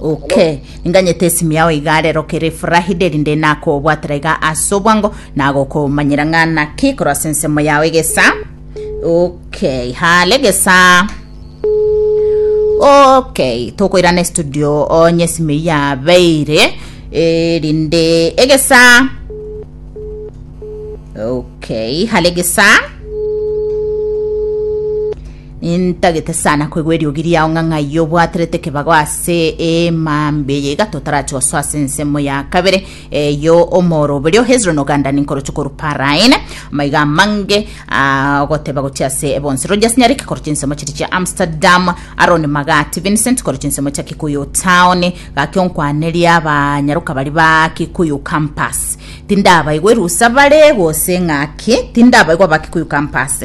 Oke, inganyete esimi yao iga rero kere efurahide, rinde nakobwatera iga ase obwango, nagokomanyera ng'a naki korwa ase ensemo yao egesa. Okay, hale gesa. Okay, tokoirana estudio onye esimi eyio yabeire eh, rinde egesa. Okay, hale gesa. Nintagete sana koigwa eriogi riao ng'a ng'ai obwaterete ekebago ase eema mbe eye igato otarache gosoa ase ensemo ya kabere eyo omoroberio Hezroni ogandani nkoroche korwa Paraine maiga amange agoteba gochia ase ebonsi Rogers Nyariki koroche ensemo chiri chia Amsterdam Aron Magati Vincent koroche ensemo chia Kikuyu Town gaki onkwanerie abanyaroka bari ba Kikuyu Campus tindabaigwa erusa bare gose ng'aki tindabaigwa ba Kikuyu Campus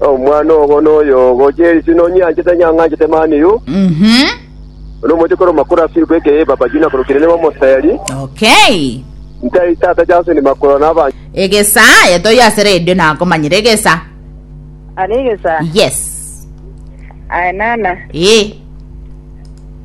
Omwana ogo noyo ogochia eri sino onyianchete onye ang'anchete mani yu. Mhm. Ono omochie korwa makoro ase iko eke y'ebabaji na korokire nigo omoseri. Okay. Ntai tata Jason ni makoro na aba Egesaa aye toyo ase radio nakomanyire egesaa. Ari egesa. Yes. Aye nana. Eh.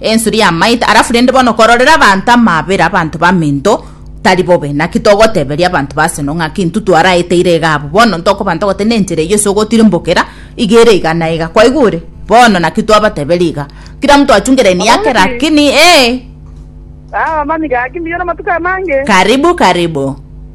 ensuri yamaete alafu rende bono kororera abanto amabera abanto baminto tari bobe naki togoteberia abanto baseno ng'aki intu twaraeteire iga abwo bono ntokoba ntogote na enchera eyio ase ogotirimbokera iga ere iga na iga kwaigure bono naki twabateberia iga kira mtu achunge laini yake lakini ee Ah, mami gaki mbuya namatuko amange. karibu karibu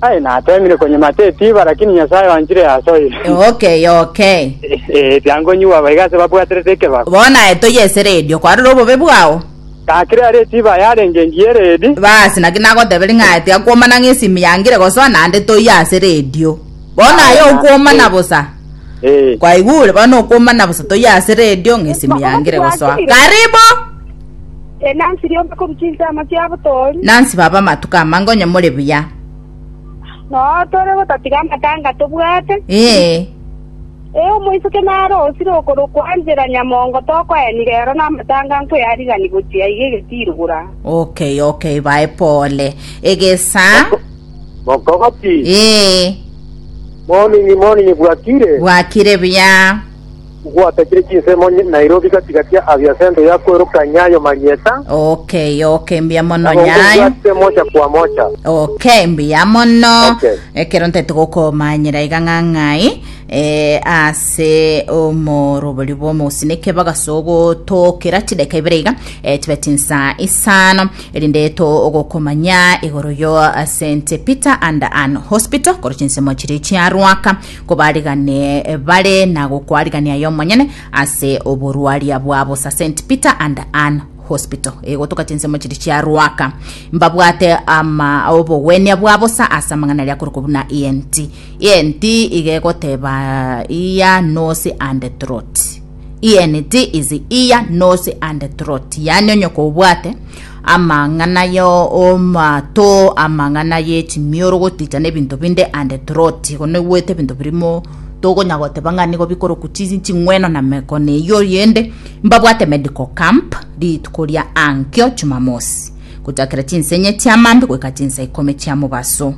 Aye natemire konyima tetiba, lakini Nyasaye oanchire ase oye. Okay, okay. Ee, tiankonyiwa aba iga ase babwaterete ekebago. Bono aye toyesere erio, kwarora obobe bwao. Gakire are etiba aye arenge engiya eredi. Basi naki nagoteberia ng'a aye tiakwomana ng'a esimi yangire gosoa naende toiyo ase redio. Bono aye Aye na- okwomana ee. bosa. Ee. Kwaigure? Bono okwomana bosa toiyo ase redio ng'a esimi yangire gosoa. Karibu! Enansi rionsi korwa chinsemo chiabo tori. Nansi baba amatuko amange onye more buya. Noo tore gotatiga amatanga tobwate. Ee. Ee omoisoke nare osire okorokwa Angela Nyamongo tokoeni rero na amatanga nkoyarigani gochia iga egetiiro gora. Okay okay bae pole. Egesa. Mokogoti. Ee. Morning morning bwakire. Bwakire buya. Gwatakire chinsemo Nairobi gati gati abia sento ya kwerokania ayo marieta. Okay, okay, mbuya mono Nabo nyayo. nkobwate mocha kwa mocha. Okay, mbuya mono. Okay. Ekero ntaete gokomanyera iga ng'ang'ai eh, ase omorobori bw'omosineke bagasogotokera chideka ibere iga eh, tibe tinsa isano erinde to ogokomanya igoro yo eh, St Peter and Anne Hospital koro chinsemo chiri chiarwaka kobarigane bare na gokwarigania yomonyene ase oborwaria bwabo sa St Peter and Ann Hospital egotoka chinsemo chiri chia Ruaka mbabwate ama obogwenia bwa bosa ase amang'ana aria korokwa buna ENT. ENT iga egoteba ear, nose and throat. Ieneti is ear nose and throat, yaani onye kobwate amang'ana y'amato, amang'ana y'echimioro goticha n'ebinto binde and throat, igo noigwete ebinto birimo tokonya goteba ng'a nigo bikoroku chi- ching'weno na mekono eyio yende mbabwate medical camp rituko ria ankio Jumamosi gochakera chinsa enye chia maambia goika chinsa ikomi chia mobaso.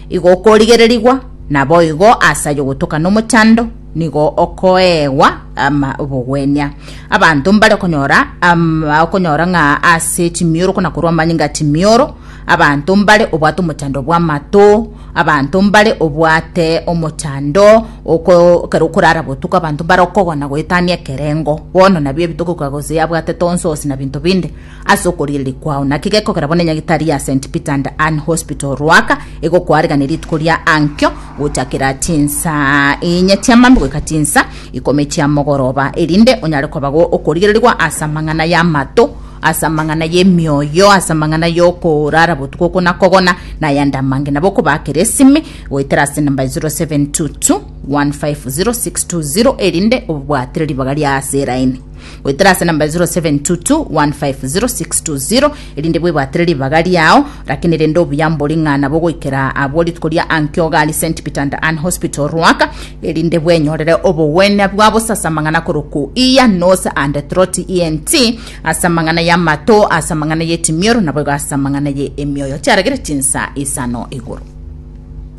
Igo okorigererigwa naboigo ase ayio gotoka nomochando nigo okoegwa ama obogwenia. Abanto mbare konyora ama okonyora ng'a ase chimioro kona korwa amanyinga chimioro abanto mbare obwate omochando bw'amato abanto mbare obwate omochando oko ekero okorara botuko abanto mbare okogona goetania ekerengo bono nabio ebitokoka gose yabwatete onsosi na binto binde Ase okorigereria kwao, naki gekogera bono enyagitari ya St. Peter and Ann Hospital, Ruaka, egokoarigania rituko ria ankio gochakera chinsaa inye chiamambia goika chinsa ikomi chia mogoroba, erinde onyare kobago okorigererigwa ase amang'ana y'amato, ase amang'ana y'emioyo, ase amang'ana y'okorara botuko oko na kogona, na ayande amange? Nabo okobaakera esimi goetera ase enamba 0722 150620 erinde obwatire ribaga ria ase eraini. goetera ase namba 0722150620 erinde bwebwatire ribaga riao lakini rende obuya mbori ng'a nabo goikera abwo rituko ria ankio gari st peter and ann hospital rwaka erinde bwenyorere obogwenia bwa bosasa mang'ana koroku iya nose and trot ent ase amang'ana y'amato ase amang'ana y'etimioro naboigo ase amang'ana ye emioyo chiaregere chinsa isano igoro